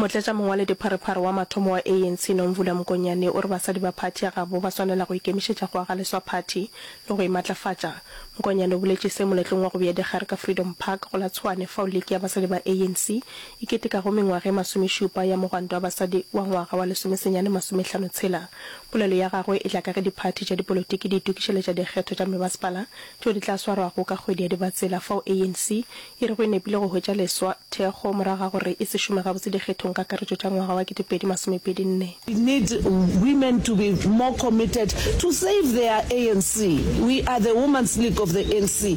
Motlatšamongwaledipharephare wa mathomo wa ANC, Nomvula Mokonyane, o re basadi ba phathi ya gabo ba swanela go ikemišetša go aga leswa phathi le go e matlafatša. Mokonyane o boletše se moletlong wa go bea dikgare ka Freedom Park go la Tshwane fao liki ya basadi ba ANC e ketekago mengwaga e masomešupa ya mogwanto wa basadi wa ngwaga wa lesomesenyane masomehlano tshela. Polelo ya gagwe e tla ka ge diphathi tša dipolotiki di itokišeletša dikgetho tša mebasepala tšeo di tla swarwago ka kgwedi ya Dibatsela fao ANC e rego e nepile go hwetša leswa thekgo morago ga gore e se šome gabotse dikgethong kakaretšo tša ngwaga wa 2024. We need women to be more committed to save their ANC. We are the Woman's League of the ANC.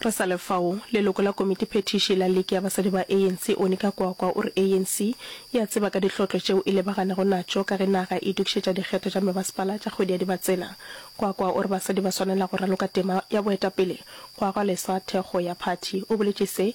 Re sa le fao, leloko la komitiphethiši la Liki ya Basadi ba ANC, Onika Kwakwa, o re ANC e a tseba ka dihlotlo tšeo e lebaganego natšo ka ge naga e itokišetša dikgetho tša mebasepala tša kgwedi ya Dibatsela. Kwakwa o re basadi ba swanela go raloka tema ya boetapele go aga leswa thekgo ya phathi. O boletše se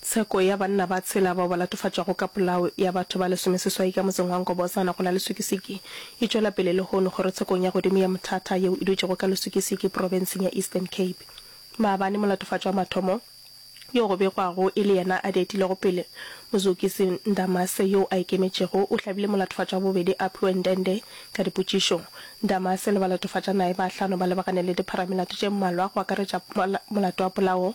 Tsheko ya banna ba tshela bao ba latofatšwago ka polao ya batho ba lesomeseswai ka motseng wa Nkobozana go la Leswikisiki e tšwela pele lehono kgorotshekong ya godimo ya Mthatha yeo e dutšego ka Leswikisiki profenseng ya Eastern Cape. Maabane molatofatšwa wa mathomo yo go begwago e le yena a di etilego pele, Muzukisi Ndamase yo a ikemetšego o hlabile molatofatšwa wa bobedi Aphiwe Ndende ka dipotšišo. Ndamase le balatofatšanaye ba hlano ba lebagane le dipharamelato tše mmalwa go akaretša molato wa polao,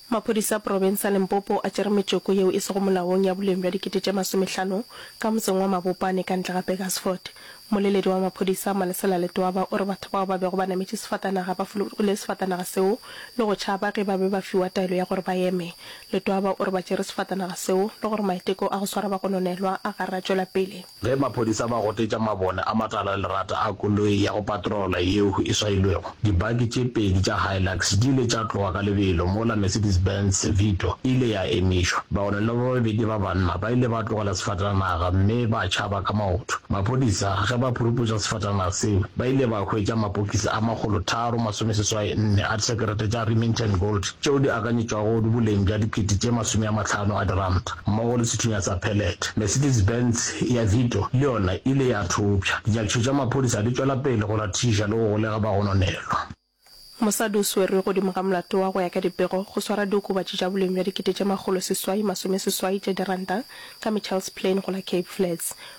Maphodisa a profense ya Limpopo a tšere metšoko yeo e sego molaong ya boleng bja dikete tše masomehlano ka motseng wa Mabopane ka ntle ga Burgersfort. Mmoleledi wa maphodisa, Malesela Letwaba, o re batho bao ba bego ba nametše sefatanaga ba fologile sefatanaga seo le go tšhaba ge ba be ba fiwa taelo ya gore ba eme. Letwaba o re ba tšere sefatanaga seo le gore maiteko a go swara bagononelwa a garatšwela pele. Ge maphodisa ba gotetša mabone a matala a lerata a koloi ya go patrola yeo e swailwego, dibaki tše pedi tša Hilux di ile tša tloga ka lebelo mola Mercedes-Benz Vito e ile ya emišwa. Baone le ba babedi ba banna ba ile ba tlogela sefatanaga mme ba tšhaba ka maoto. Maphodisa ge ba phuruputša sefatanaga seo, ba ile ba hwetša mapokisi a makgolo tharo masomeseswai nne a disekerete tša Remington Gold tšeo di akanyetšwago boleng bja dikete tše masome a mahlano a diranta. Mmogo le sethunya sa pellet, Mercedes-Benz ya Vito le yona e ile ya thopša. Dinyakišo tša maphodisa di tšwela pele go rathiša le go golega bagononelwa. Mosadi o swerwe godimo ga molato wa go ya ka dipego, go swara diokobatši tša boleng bja dikete tše makgolo seswai masome seswai tša diranta ka Mitchells Plain go la Cape Flats.